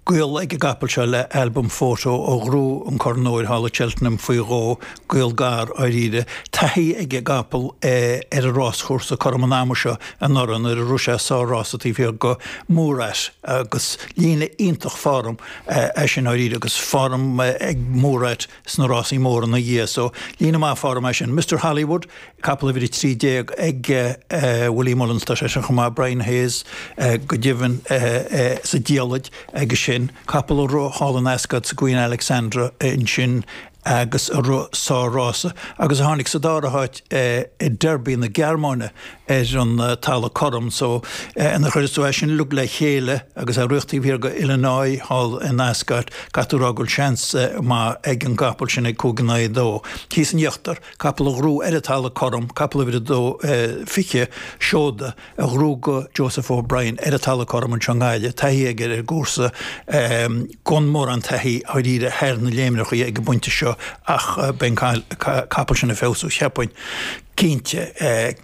Gaol ag an gcapall seo le Al Boum Photo a ghnóthaigh an Corn Óir thall i Cheltenham faoi dhó, gaol gar, dháiríre. Taithí ag an gcapall ar an ráschúrsa cothrom an ama seo anuraidh nuair a rith sé sár-rása taobh thiar de Murat agus líne iontach form é sin, dháiríre, agus form ag Murat. sna rásaí móra ina dhiaidh, so líne mhaith form é sin. Mister Hollywood, capall uimhir a trí déag ag Willie Mullins, tá seisean chomh maith, Brian Hayes go deimhin sa diallait aige sin, capall a rith thall in Ascot sa Queen Alexandra ansin agus a rith sár-rása agus a tháinig sa dara háit i Derby na Gearmáine ar an Talamh Cothrom so nuair a chuireas tú é sin uilig le chéile agus é rite taobh thiar de Illinois thall in Ascot, caithfidh tú rá go bhfuil seans maith ag an gcapall sin ag cúig in aghaidh a dó. Thíos in íochtar, capall a ghnóthaigh ar an Talamh Cothrom, capall uimhir a dó fiche, Shoda, a ghnóthaigh do Joseph O'Brien ar an Talamh Cothrom anseo i nGaillimh, taithí aige ar an gcúrsa, gan mórán taithí dháiríre thar na léimreachaí ag an bpointe seo ach beidh an capall sin ag feabhsú cheapfainn. Cinnte,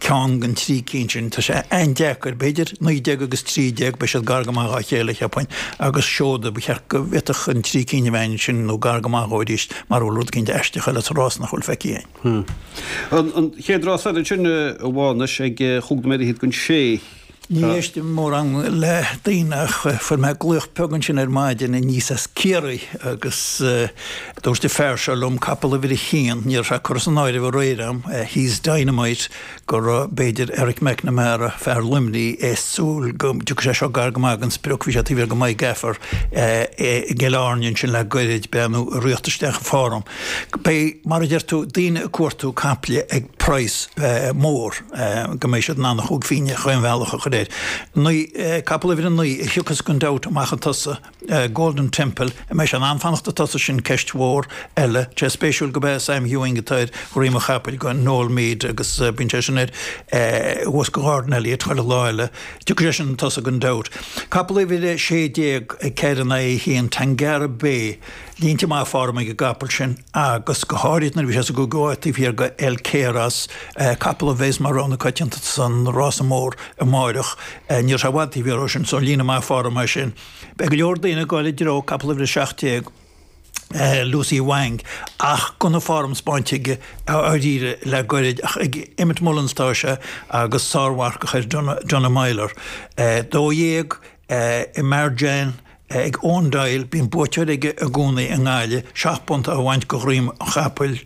ceann den trí cinn sin. Tá sé an-deacair, b'fhéidir naoi déag agus trí déag, beidh siad gar go maith dhá chéile, cheapfainn, agus Shoda, ba cheart go bhféadfadh an trí cinn a bheith ansin nó gar go maith dhó arís, mara bhfuil rud eicínt aisteach eile sa rása nach bhfuil feicthe againn. An chéad rás eile ansin, a Mhánuis, ag chúig nóiméad fhichead don sé. Ní éistim mórán le daoine ach fuair mé glaoch beag ansin ar maidin aníos as Ciarraí agus dúirt an fear seo liom, capall uimhir a haon, ní raibh sé curtha san áireamh aréir agam, Hees Dynamite, go raibh b'fhéidir Eric McNamara, fear Luimnigh, ag súil go dtiocfadh sé seo gar go maith den sprioc, bhí sé taobh thiar de My Gaffer i gCill Airne ansin le gairid, beannú a ríocht isteach an form. Beidh, mar a deir tú, daoine ag cuartú caiple ag praghas mór. go mbeidh siad in ann a chúig phínne chaon bhealach a chur air. Naoi, capall uimhir a naoi, a thiocfas gan dabht amach chun tosaigh, Golden Temple, an mbeidh sé in ann fanacht chun tosaigh sin ceist mhór eile, tá sé spéisiúil gurb é Sam Ewing atá ar dhroim an chapaill do Noel Meade agus bíonn sé sin air thuas do Gordon Elliott chuile lá eile, tiocfaidh sé sin chun tosaigh gan dabht. Capall uimhir a sé déag, ceathair in aghaidh a haon, Tangara Bay, línte maithe form ag an gcapall sin agus go háirid nuair a bhí sé sa gcúigiú háit taobh thiar de El Cairos, capall a bheas mar rogha na coitianta san rása mór amáireach. Ní raibh sé i bhfad taobh thiar dhó sin, so líne mhaith form é sin. Beidh go leor daoine ag gabháil i dtreo capall uimhir a seacht déag, Lucy Wang, ach gan aon form spáinte aige dáiríre le gairid ach ag Emmet Mullins atá sé agus sármharcach air, Donagh Meyler, dó dhéag, Imarajan. Ag Eoin Doyle, bíonn buaiteoir aige i gcónaí i nGaillimh, seacht bpunt á bhaint go dhroim an Chapaill,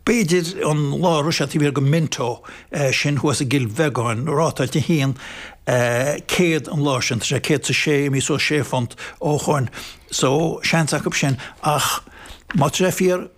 b'fhéidir an lá a raibh sé taobh thiar den Minto sin thuas i gCill Bheagáin, rátáilte 100 an lá sin, tá sé 106 inniu, suas sé phunt ó shoin, so seans acu sin ach má tá sé fíor,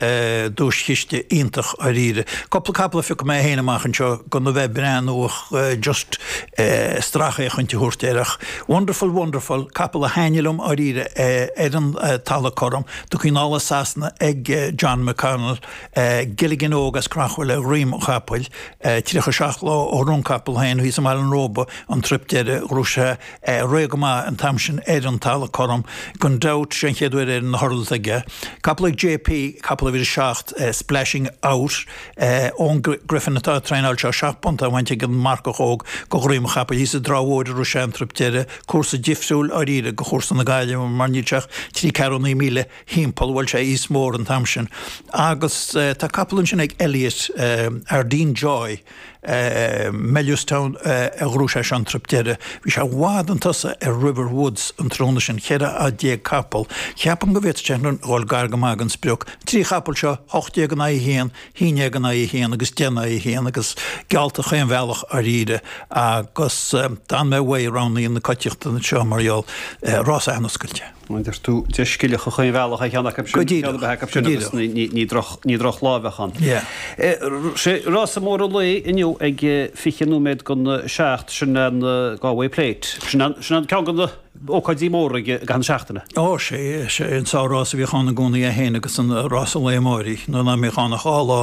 duaischiste iontach dháiríre. Cúpla capall a phiocadh mé féin amach anseo gan a bheith ag breathnú ach just stracfhéachaint a thabhairt air ach Wonderful Wonderful, capall a thaitnigh liom dháiríre ar an talamh cothrom do Johnny Murtagh, tá sé anois ag John McConnell, Gilligan óg as Creachmhaoil ar dhroim an chapaill, 37 lá ó rith an capall féin thíos i mBaile an Róba an trip deireadh a ghnóthaigh sé. rith go maith an t-am sin ar an talamh cothrom, gan dabht, sé an chéad uair ar na hurdles aige, capall ag J. P. capall uimhir a seacht, Splashing Out, Eoin Griffin atá ag traenáil seo, seacht bpunt á bhaint ag an marcach óg go dhroim chapaill thíos i dTrá Mhóir a rith sé an trip deireadh, cúrsa difriúil, dháiríre, go chúrsa na Gaillimhe mar níl sé ach trí cheathrú míle thimpeall, bhuail sé East Mór an t-am sin agus tá capall ansin ag Elliott, Ardeen Joy, Bellewstown a ghnóthaigh sé sin an trip deireadh. Bhí sé i bhfad 'un tosaigh ar River Woods an tráthnóna sin, 14 capall. Ceapaim go bhféadfadh sé an-run a dhul, gar go maith gon sprioc. Trí chapall seo, hocht déag in aghaidh a haon, haon dhéag in aghaidh a haon agus deich in aghaidh a haon agus geallta chaon bhealach dháiríre agus d'fhan mé ó rogha na coitiachta anseo mar gheall, rása an-oscailte. Deir tú deiscileach a choingbhealach é cheann acu sin, ceann ar bith acu sin agus ní drochlámheach ann. Sé rása mór an lae inniu ag fiche nóiméad go na seacht, sin an Galway Plate. Sin an ceann de na hócáidí móra i gcaitheamh na seachtaine. Ó sea, sé an seanrása a bhíodh ann i gcónaí é fhéin agus an rása an lá amárach, nuair nach mbíodh ann ach dhá lá i